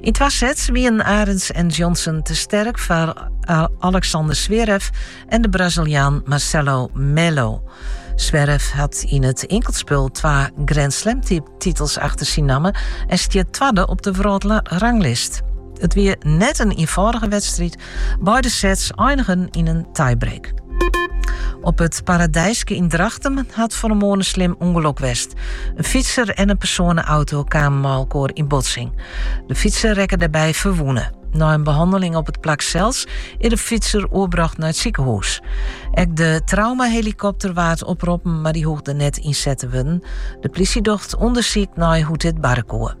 Yn twa sets wienen Arends en Johnson te sterk foar eh, Alexander Zverev en de Braziliaan Marcelo Melo. Zverev hat yn it inkeltspul twa Grand Slam titels achter syn namme en stiet twadde op de wrâldranglist. It wie net in ynfâldige wedstriid, Beide sets einigen yn in tiebreak. Op it Paradijske yn Drachten hat fan 'e moarn in slim ûngelok west. In fytser en in persoaneauto kamen mei elkoar yn botsing. De fytser rekke dêrby ferwûne. Nei in behanneling op it plak sels is de fytser oerbrocht nei it sikehûs. Ek de traumahelikopter waard oproppen, mar dy hoegde net ynset te wurden. De plysje docht ûndersyk nei hoe't dit barre koe.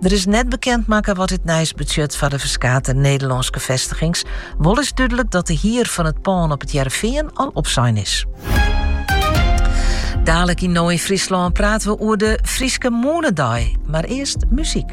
Der is net bekend makke wat dit nijs betsjut foar de ferskate Nederlânske festigings. Wol is dúdlik dat de hier fan it pân op It Hearrenfean al opsein is. Daalik yn No yn Fryslân praten we oer de Fryske Moanedei, mar earst muzyk.